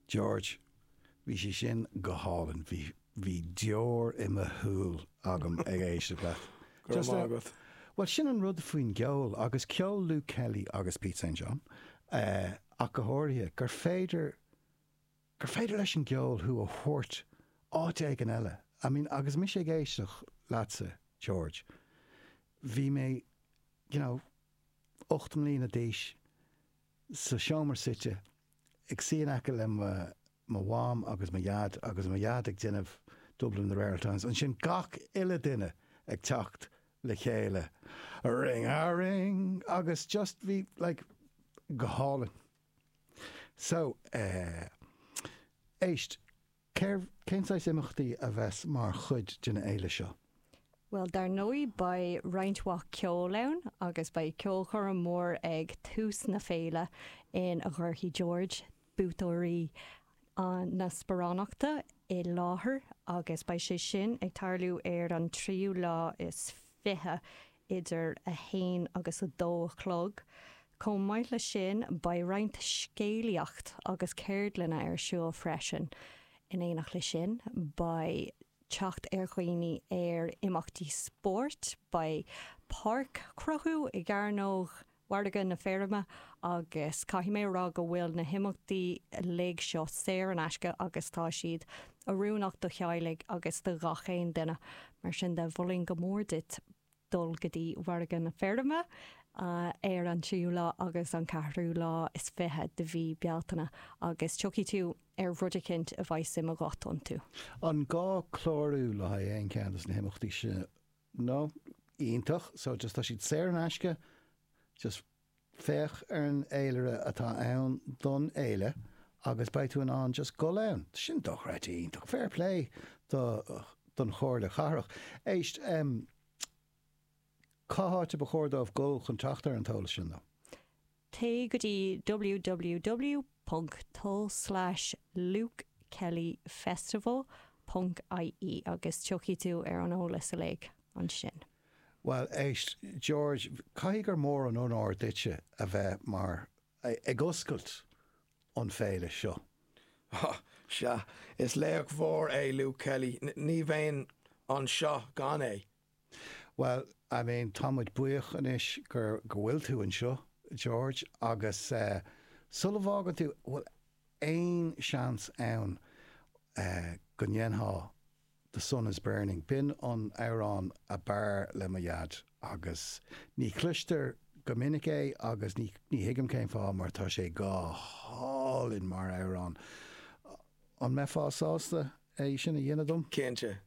George, bhí sé sin go hálainn, bhí deoir i mo shúil agam ag éisteacht leat. Go raibh maith agat. Bhuel sin an rud faoin gceol agus ceol Luke Kelly agus Pete St John ach go háirithe, gur féidir, gur féidir leis an gceol thú a thabhairt go háit éigin eile. I mean agus mise ag éisteacht leatsa, George, bhí mé, you know, ocht mbliana d'aois, sa seomra suite, ag suí in aice le mo Mham agus mo Dhaid agus mo Dhaid ag déanamh Dublin in the Rare Oul Times, ansin gach uile duine ag teacht le chéile, ring a ring! agus just bhí like, go hálainn. So, eh. éist. Cérbh, cén saghas imeachtaí a bheas mar chuid den fhéile seo? Bhuel, dar ndóigh beidh roinnt mhaith ceoil ann agus beidh ceolchoirm mhór ag tús na féile ina gcuirfidh George buaiteoirí na sparánachta i láthair agus beidh sé sin ag tarlú ar an tríú lá is fiche idir a haon agus a dó a chlog. Chomh maith leis sin, beidh roinnt scéalaíocht agus ceardlanna ar siúl freisin. In éineacht leis sin, beidh teacht ar dhaoine ar imeachtaí spóirt, beidh páirc á cruthú i gCearnóg mhargadh na feirme agus caithfidh mé a rá go bhfuil na himeachtaí uilig seo saor in aisce agus tá siad oiriúnach do theaghlaigh agus do ghach aon duine. Mar sin de, mholfainn go mór duit dul go dtí Mhargadh na Feirme ar an tríú lá agus an ceathrú lá is fiche de mhí Bealtaine agus tiocfaidh tú ar rud eicint a mbeidh suim agat iontu. An gá clárú le haghaidh aon cheann de na himeachtaí seo? no, iontach, so just tá siad saor in aisce, just féach ar an fhéilire atá ann don fhéile agus beidh tú in ann just dhul ann. Tá sin dochreidte iontach, fair play do, don Chomhairle Chathrach. Éist, em, cá háit ar ba chóir dóibh dhul chun teacht ar an t-eolas sin, though? Téigh go dtí www.lukekellyfestival.ie agus tiocfaidh tú ar an eolas uilig ansin. Bhuel, éist, George, caithfidh gur mór an onóir duitse a bheith mar, ag oscailt an féile seo. Á, sea, is laoch mhór é Luke Kelly, ní bheinn anseo gan é. Bhuel, I mean, tá muid buíoch anois gur, go bhfuil tú anseo, George, agus eh, sula bhfágann tú, bhfuil aon seans ann eh, go ndéanfá The Sun Is Burning, b'in an t-amhrán ab fhearr le mo dhaid agus ní chloistear go minic é agus ní, ní thuigim cén fáth mar tá sé go hálainn mar amhrán, an mbeifeá sásta é sin a dhéanamh dom? Cinnte.